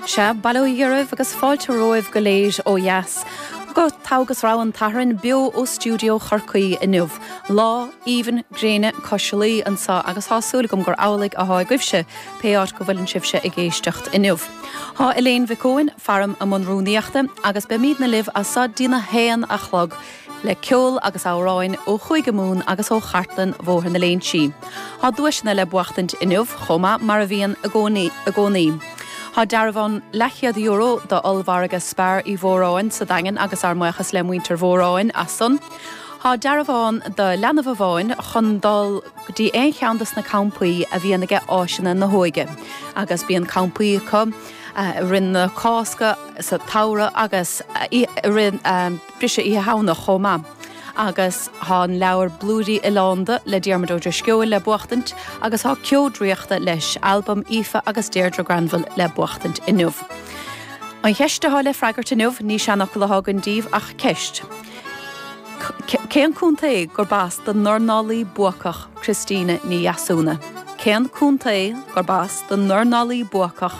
Sea, bail ó Dhia oraibh agus fáilte romhaibh go léir ó dheas go Togha agus Rogha an tSathairn beo ó stiúideo Chorcaí inniu. Lá aoibhinn gréine cois Laoi anseo agus tá súil agam gur amhlaidh atá agaibhse, pé áit go bhfuileann sibhse ag éisteacht inniu. Tá Elaine Mhic Eoin faram i mbun rúnaíochta agus beimidne libh as so dtí'n a haon a chlog. le ceol agus amhráin ó Chúige Mumhan agus ó chartlann Bhóthar na Léinsí. Tá duaiseanna le buachtaint inniu chomh maith, mar a bhíonn i gcónaí. Tá dearbhán leathchéad-euro d'ollmhargadh Spar Uí Mhóráin sa Daingean agus ár mbuíochas le muintir Mhóráin as san. Tá dearbhán do leanbh amháin chun dul go dtí aon cheann dos na campaí a bhíonn aige Áiseanna na hÓige agus bíonn campaí acu i rith na Cásca, sa tsamhradh agus i rith. briseadh Oíche Shamhna chomh maith. Agus tá an leabhar Blúirí Oileánda le Diarmuid Ó Drisceoil le buachtaint agus tá Ceo Draíochta leis, albam Aoife agus Déirdre Granville, le buachtaint inniu. An cheist atá le freagairt inniu, ní seanfhocal atá againn daoibh ach ceist. Cén contae gurb as don ndornálaí buacach Christina Ní Dheasúna? Cén contae gurb as don ndornálaí buacach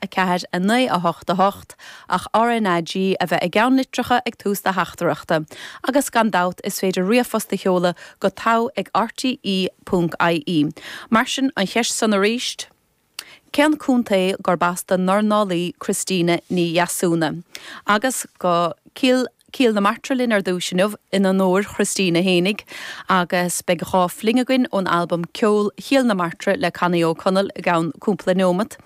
4, 9, 8, 8, ach RnaG a bheith i gceann litreacha ag tús do theachtaireachta, agus gan dabht is féidir ríomhphost a sheoladh go togha ag rte.ie. Mar sin, an cheist san arís, cén contae gurb as don ndornálaí Christina Ní Dheasúna? Agus go Cill. Cill na Martra linn ar dtús inniu in onóir Christina héinig agus beidh dhá fling againn ón albam Ceol Chill na Martra le Connie Ó Conaill i gceann cúmpla neomat.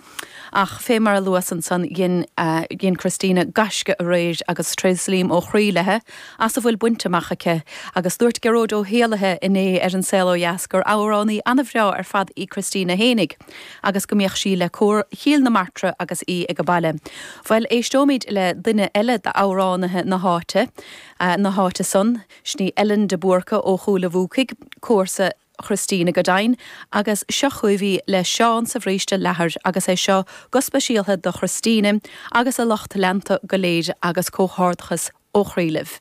Ach fé mar a luas ansan dhein dhein Christina gaisce aréir agus tréaslaím ó chroí léithe as a bhfuil bainte amach aici agus dúirt Gearóid Ó hÉalaithe inné ar An Saol Ó Dheas gur amhránaí an-bhreá ar fad í Christina héinig. agus go mbíodh sí le Cór Chill na Martra agus í aige baile. Bhuel, éisteoimid le duine eile d'amhránaithe na háite, na háite san, sin í Ellen de Búrca ó Chúil a' Bhuacaigh, comharsa Christina go deimhin, agus seo chugaibh í le Seán sa Bhríste Leathair agus é seo go speisialtha do Christina agus a lucht leanta go léir agus comhghairdeachas ó chroí libh.